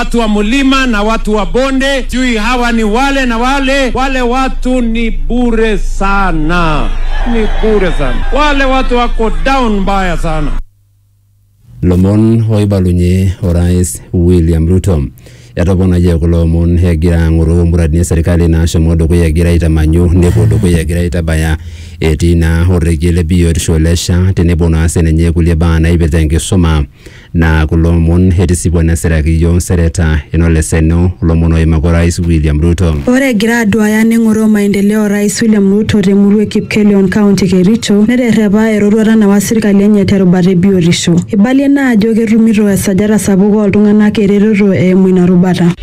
watu wa mlima na watu wa bonde, sijui hawa ni wale na wale. Wale watu ni bure sana, ni bure sana. Wale watu wako down mbaya sana. lomon oibalunye orais william ruto etoponayie kulo omon egira ang'oru muradini e serikali naashomo dukuya egira aitamanyu nepuo dukuya egira aitabaya etii naa orregie le biotisho le SHA tenebo naa sininye kulie baa naipirta enkisuma Naa kulo omon etisipua nesiraki iyiook nsereta enoleseno lomon oimaka Orais William Ruto. Ore egira aduaaya neng'oroo maendeleo Orais William Ruto te murua e Kipkelion County e Kericho neterrepa eroruata nawa sirkali enye te rubata e biotisho. Eibalie ina ajo ketumito esajata sapuk oo ltung'anak eretoto eimu ina rubata.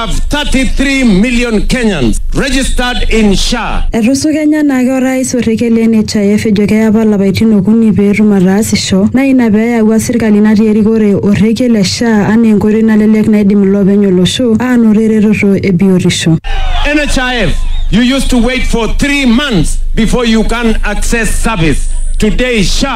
have 33 million Kenyans registered in SHA. Etusu Kenya naa ke orais orrekie le NHIF ejo keya apa lapaitin okuni pee etum ataasisho naa ina pee eyawua sirkali natii erikore orrekie le SHA anaa enkoitoi nalelek naidim iloopeny olosho aanoto eretoto e biotisho. NHIF, you used to wait for three months before you can access service. Today, SHA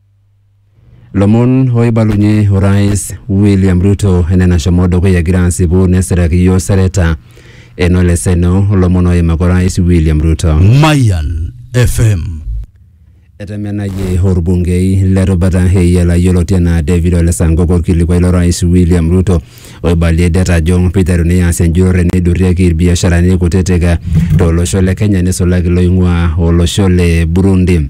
Lomon oibalunye orais William Ruto enena shomo dukuya egira asipu nesiraki iyiook sareta eno leseno olomon oimaka orais William Ruto. Mayan FM. Etemenayie orbungei le rubata Eyiala yioloti enaa David Ole Sankok orkilikuai lo rais William Ruto oibalie det ajo piteruni aas enjurore neidurrieki irbiasharani kutitik to losho le Kenya nisulaki loing'ua olosho le Burundi.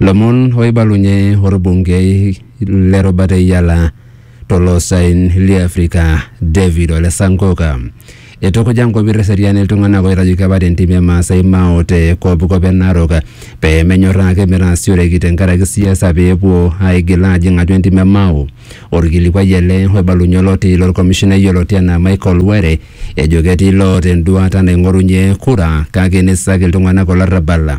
Lomon oibalunye orbungei le rubata e Yala to loosaen li Afrika David Ole Sankoka. Eitukuja nkopir eseriani iltung'anak oitajuki apa te ntim e Maasai Mao te kopkop e Narok pee menyorraa ake metaasioreki tenkaraki siasa pee epuo aigil aajing atua entim e Mao. Olkilikuai ele oibalunye oloti lo lkomishinai oloti enaa Michael Were ejo ketii loota enduaata naing'orunye kura kake neisak iltung'anak olarrabal.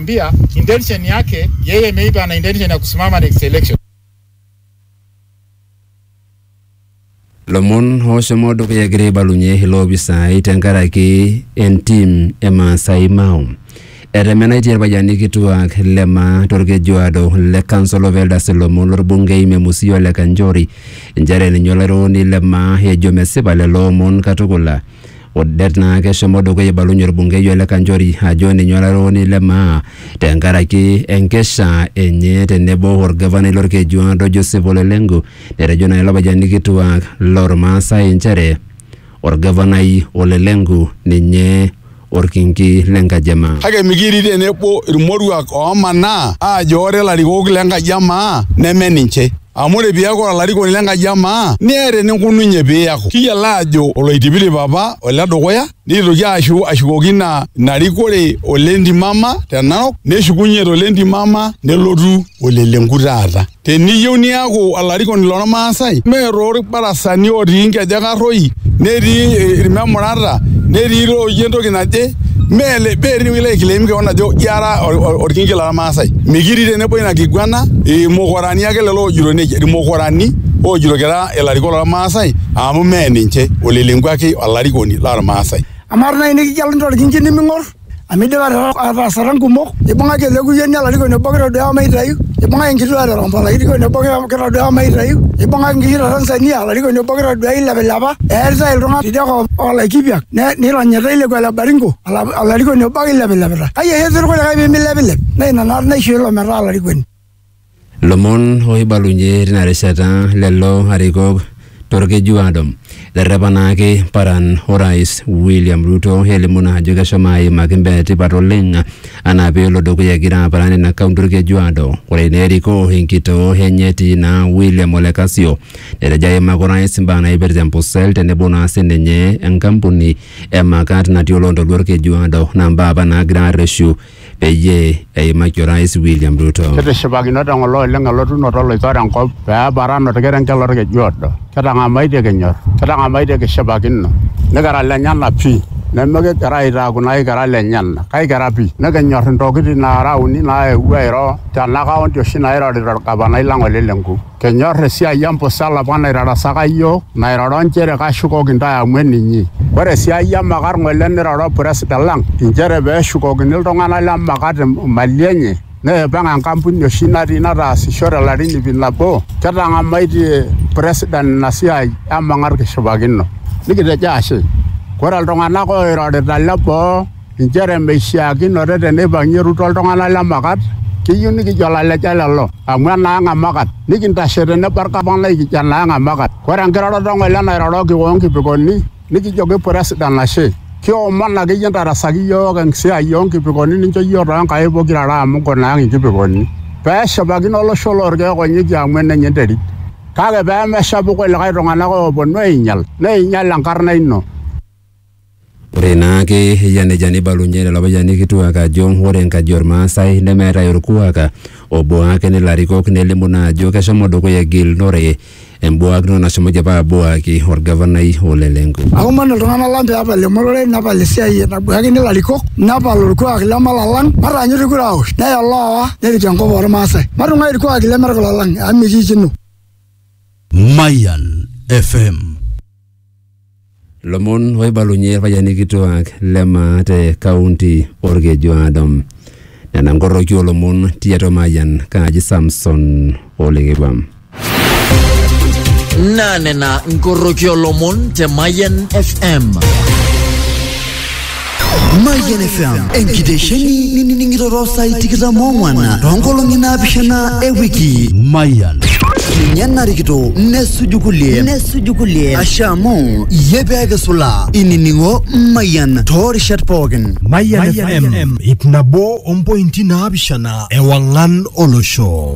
Mbia intention yake yeye maybe ana intention ya kusimama next election. lomon ooshomo dukuya egira aibalunye ilo opisai tenkaraki entim e Maasai Mao. Etemenaitie irpayiani kituak le Maa torkejuado le Council of Elders ilomon lorbungei Memusi Ole Kanchori inchere ninye olairukoni le Maa ejo mesipa lelo omon katukul O det naa keshomo dukuya eibalunye olbungei Ole Kanchori ajo ninye olarewoni le maa tenkaraki enkesha enye tenebo olgavanai lolkejuado Joseph Ole Lenku netejo naa ilo payiani kituak lolmaasai inchere olgavanai Ole Lenku ninye olkinki le nkaji e maa. Kake mikiirik tenebo ilmoruak oomanaa aajo ore ilarikok le nkaji e maa neme ninche. Amu ore piaku olarikoni l'enkaji e maa, niata eninkununye piaku. Kiyiolo aajo oloitipirip apa ole dukuya, neitoki aashu ashukoki ina ina rikore ole Ntimama te Narok, neshukunye to le Ntimama nelotu ole Lenku taata. Teniyieu niaku olarikoni loo Lmaasai, mee too lbarasani ootii nkejek arroi, netii ilmemurata, netii looji entoki naje, mee mee tine wueji ilo aiclaim kewon ajo ira olkinki lo Lmaasai. Mikitii tenebo ina kiguana, imukura. Irmukorani ake lelo oojito nejia, Irmukorani oojito kira ilarikok lormaasai amu mee ninche, olelenkua ake olarikoni lormaasai. Amaa tenaa inikigeluni torkinki niming'or amu idipa ataasata nkumok, ibung'aki ele kuyioni olarikoni obo kitoduaya maitayu, ibung'aki enkituaa e Torombo olarikoni obo kitoduaya maitayu, ibung'aki nkishu te Tanzania olarikoni obo kitoduaya ilepilepa, eeritai iltung'anak tidia kop o Laikipiak neironyitai ilekua le Baringo olarikoni obo ake eilepilepita. Kai oshi etii irkulikae pee milepilep? Naa ina naa naishoo ilo metaa olarikoni. Lomon oibalunye tina rishata lelo arikok torkeju adom. Eterrepa naake paran orais William Ruto elimu naa ajo keshomo aimaki imbaa etipat oleng anaa peelo dukuya egira aparan ina kaunti orkeju ado. Ore naa erikoo enkitoo enye etii naa William Ole Kasio netejo aimaki orais imbaa naipirta empusel tenebo naa sininye enkampuni e Makat natii oloontoluo orkeju ado naa mbaa apa naagira arreshu peyie eimaki Orais William Ruto. Kitishipakino teng'olon oleng elotunoto oloitore enkop pee eparan olkerenket lolkeju odo. Kitang'amaitie kinyor, kitang'amaitie kishipakino, nikira lenyena pi. Nimikigira aitaaku naa aikira lenyena, kaikira pi. Nikinyor intokitin naara uni naewuo airo tena kaunti oshi nairorita olgavanai lang Ole Lenku. Kenyor esiai empusa olapa naitarasaka iyiook, nairoro nchere kashukoki intae amu eninyi. Ore esiai emakat ng'ole neiroro president lang inchere pee eshukokini iltung'ana le makat imali enye neipang enkampuni oshi natii nataasisho te larin ip nabo. Kitang'amaitie president ina siai emakat kishipakino nikitejo ashe. Ore iltung'ana ooirorita le boo. inchere meishiakinore teneipang'ie Ruto iltung'anak le Makat keyieu nikijo laleja lelo amu enaang e Makat nikintashe tenebo olgavanai ikijo enaang e Makat ore enkiroroto e ng'ole nairoroki o nkipikoni nikijoki puresidan ashe kiomon akeyie intarasaki iyiook esiai oo nkipikoni nincho iyiook too nkaik pokira are amu nkuna ang inkipikoni pee eshipakino olosho loo lkeek onyokie amu enenye enterit kake pee meshapu kulikae tung'anak ooponu ainyial neinyial enkarna ino. Ore naake eyia nejia neibalunye lelo payiani kituak ajo ore enkaji Olmaasai nemeetae olkuak obuak nilarikok nelimu naa ajo keshomo dukuya egilunore embuakinoto nashomoki apa abuaki olgavanai o le Lenku. Aomon iltung'ana lang pee epal emorore nepal esiai nabuakini ilarikok nepal olkuak lemalalang mataanyutu kura aaosh neya oloowa nerik enkop oo Lmaasai. Matung'ai ilkuaki leme kulo lang amu mikiikino. Mayian FM. Lomon oibalunye irpayiani kituaak le maa te kaunti Olkejuado. Nena nkoroki oolomon tiatua Mayian kaaji Samson Olekekua. Naa nena nkoroki oolomon te Mayian FM. Mayian FM enkitesheni nining'iroro saai tikitam oong'wan toonkolong'i naapishana e wiki. Mayian. Ninye narikito nesuju kulie nesuju kulie ashe amu iyie pee kisula inining'o Mayian toorishat pookin. Mayian FM ip nabo ompointi naapishana ewang'an olosho.